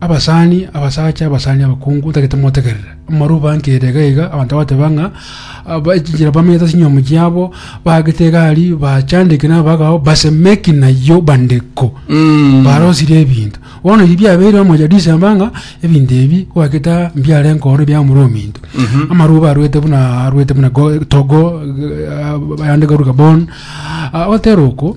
Abasani, abasacha, abasani abakungu, tagete motegerere. Amaruu bankire iga iga, abanto bagateba ng'a bachinchire bamenyete ase chinyomo chiabo, baagete egari, bachandeke n'abagao, basemeki nayio bandeko. Mm. Barosirie ebinto. Bono ebi biabeire amo ya December ng'a ebinto ebi gwaketa mbiare nkoro bia omorwa ominto. Amaruu barwete buna arwete buna go- Togo, eh, ayande garu Gabon. Ah, otera oko,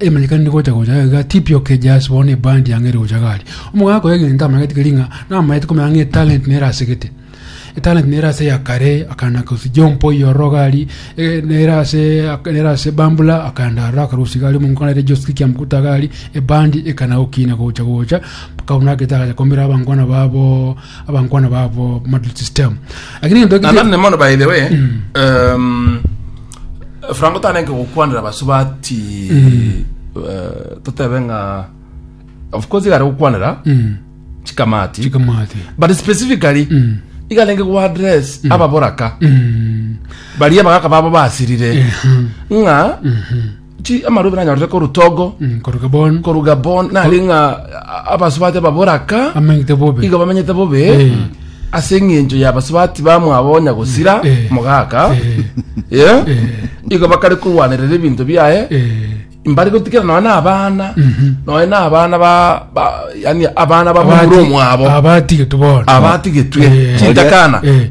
Emerika nigocha gocha gaiga tipio ke jas bono ebandi yang'eri gocha gari. Omogaka akoya egento amanyete keri ng'a namayete komenya ng'a etalent nere asegete. Etalent nere ase ya kare akana kosi jompo iyororo gari eh, nere ase nere ase bambula akanda aroro akarusi gari omonko nere joski kia mkuta gari ebandi ekana gokina gocha gocha mpaka buna agete agacha komera abangwana babo abankwana babo model system lakini egento na nane mono by the way um, frango tanenke gokwanera basu bati eh, totebe ng'a of course igare gokwanera Mm. chikamati chikamati but specifically igarenge gwa address ababoraka Mm. baria bagaka babo basirire ng'a chi amarobi nanyorete koru togo Mm, koru gabon koru gabon nari ng'a a- abasubati baboraka amanyete bobe iga bamenyete bobe Eh. ase eng'encho ya basubati bamwabo onya gosira Eh. mogaka Eh, Eh? eh, igo bakare korwanerera ebinto biaye eh, mbari gotikira noe na abana mhm. noe na abana ba ba- yani abana babura Abati- omwabo abatigetwe bono abatigetwe Eh. chintakana Eh.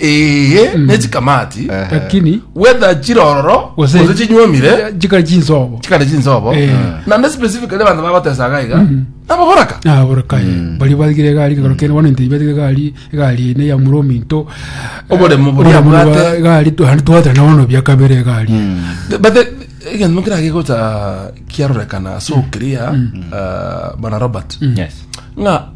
Ee, ne chikamati. lakini Whether chirororo, Gose- gose chinywomire, chikari chinsobo chikare chinsobo. Eh. Nande specifically abantu bagotesa iga iga. Nababoraka. naborakaye bari bagire egari kagoro kene bono intei bagire egari egari ene ya muro minto Oboremo bori abwate. egari twari twatera na bono bia kabere egari But the- egento kira gigota kiarorekana so clear uh, bana Robert. Yes. Ng'a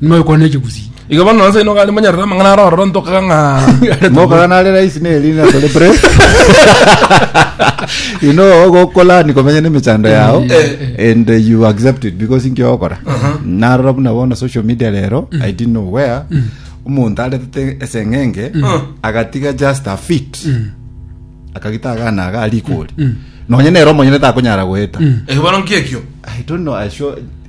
Noyo kwana echibusi. Iga bono nonsi ino gari monyarora amang'ana ara ororo ntokaga ng'a Nokaga nare raisi neri na tore pre. You know ogokolani komenya nemechando yao and uh, you accept it because inki ogokora. Narora buna bono social media rero I didn't know where omonto aretete eseng'enge agatiga just a fit akagita agana aga arikori. Nonye nere omonyene takonyara goeta. Iga bono nkiekio. I don't know, I sure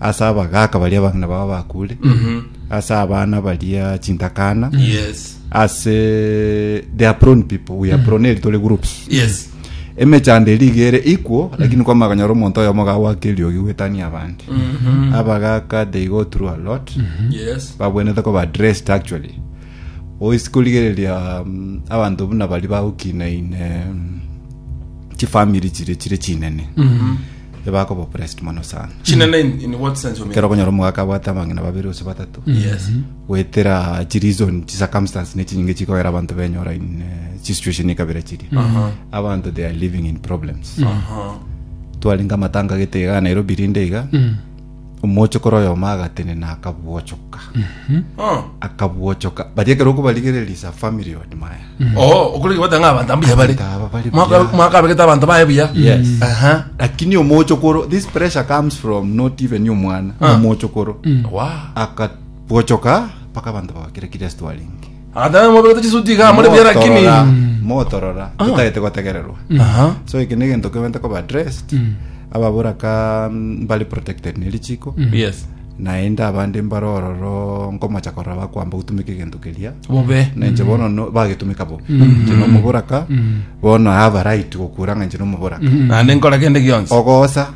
ase abagaaka baria abang'ina babo bakuure ase abana baria chintakana Yes. ase they are prone people we are prone eri tore groups Yes. emechando eri iga ere equal lakini kwa maganyora omonto oyomo gagwaka eriogi gwetania abande abagaka they go through a lot Yes. babwenete ko ba dressed actually oisi korigereria mm, abanto buna bari bagokinaine mm, chifamiri chire chire chinene ebe akoba opressed mono sana Chinene in, in what sense you mean? kero okonyora omogaka abwate abang'ina babere gose batato Yes. gwetera chireason chicircumstance ne chinyinge chikoera abanto benyora in eh, chisituation ekabira chiri Aha. abanto they are living in problems Aha. twarenge amatanga gete iga nairobi rinde iga Omochokoro oyomo agatenena akabwochoka. Oh. Akabwochoka. Baria ekero okobarigereria is a family on maya. Oh, okorege batanga abantu ambuya bari. Abantu aba bari Mwaka- buya. Mwaka abegete abantu baye buya. Yes. Aha. Lakini omochokoro this pressure comes from not even omwana. Ah. Omochokoro. Wow. Akabwochoka mpaka abantu bagakira Kristo aringe. Agataama mobe gete chisuti iga amore buya lakini. Motorora, motorora, totagete gotegererwa. Aha. So eke negento kebente koba addressed. Ababura ka mbari protected ne richiko. Yes. Naende abande mbare ororo nkomocha korora bakwamba gutumika egento keria. Bobe. Na inche bono no- bagetumika bobe. Inche nomobura ka, bono I have a right gokura ng'a inche nomobura ka. Naende nkora kende gionsi. Ogosa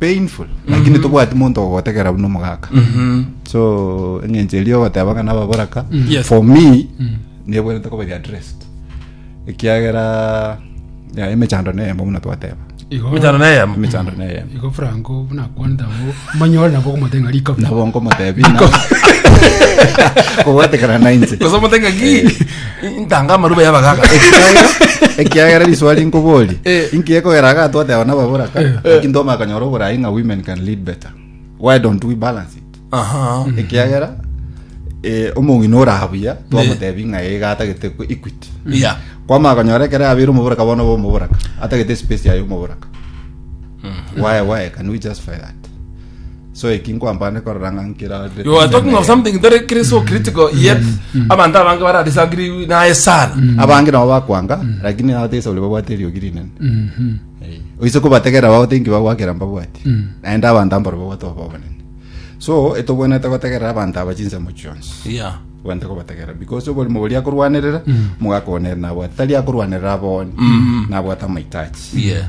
painful lakini tobwati monto ogotegera buna omogaka so eng'encho eria ogoteba ng'a nababora ka Yes. for me nebwerete koba readdressed ekiagera ya, emechando neyemo buna twateba Igo- Mechano na eyemo. emechando neyemo igo franco bunakwanete abo manyore nabo okomotenga rikabu nabo nkomotebi kogotegera nainche Kosa omotenga ki? ntanga amaruba y'abagaga ekiagera risoa rinkobori Eh. inki ekogera agatwate abana baboraka lakini toma akanyora oborai ng'a women can lead better why don't we balance it aha ekiagera eh, omong'ina orabuya twamotebi ng'a ega atagete ku- equity ya kwama akanyora ekere abere omoboraka bono ba omoboraka atagete space yaye omoboraka why why can we justify that so eki nkwambane korora ng'a nkirade You are talking of something very cri- so critical yet abanto abange bara disagree naye sana. abange nabo bakwanga lakini atesa ore babwate eriogi rinene Mhm. Eh, oise kobategera bao thinki bagwakera mbabwati Mm. naende abanto ambaro babwate obo obonene so etobwenete gotegerera abanto aba chinsemo chionsi Yeah. bwante kobategera because oborimo bori akorwanerera Mm. mogaka onere nabwate tari akorwanerera aboni Mm. nabwate amaitachi Yeah.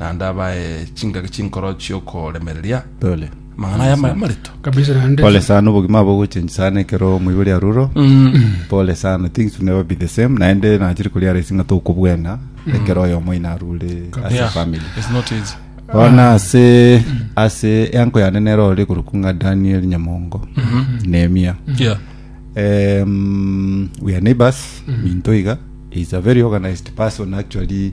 Naende abae chingaki chinkoro chi'okoremereria Pole. amang'ana aya ama- amareto. kabisa naende Pole sana obogima abo gochenji sana ekero omoibori aruro pole sana things will never be the same naende nachiri koria aresi ng'a tokobwena ekero oyomo ina arure as a Yeah, family it's not easy. bono ase ase enko yane nero ore koruku ng'a daniel nyamongo nemia Yeah. um, we are neighbors minto iga is a very organized person actually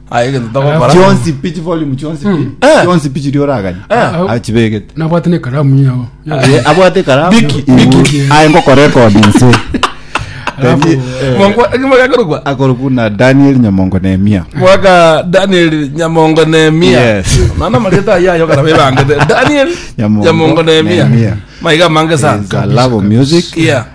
Aye egento togokora. chionsi pi chivolume chionsi pi Eh. chionsi pi chiria oragani Eh. achibegete nabwate ne karamu yao Eh, abwate karamu Biki, biki. aye ngokora ekodi nse Alafu, Then, eh, Mongo ekimo gakorokwa. akorokwa na daniel nyamongo nemia Mwaka Daniel Nyamongo Nehemia. Yes. Nana marita ya yo kana bebangete. Daniel Nyamongo Nyamongo Nehemia. Nehemia. Maiga mange sana. Is a love of music Yeah.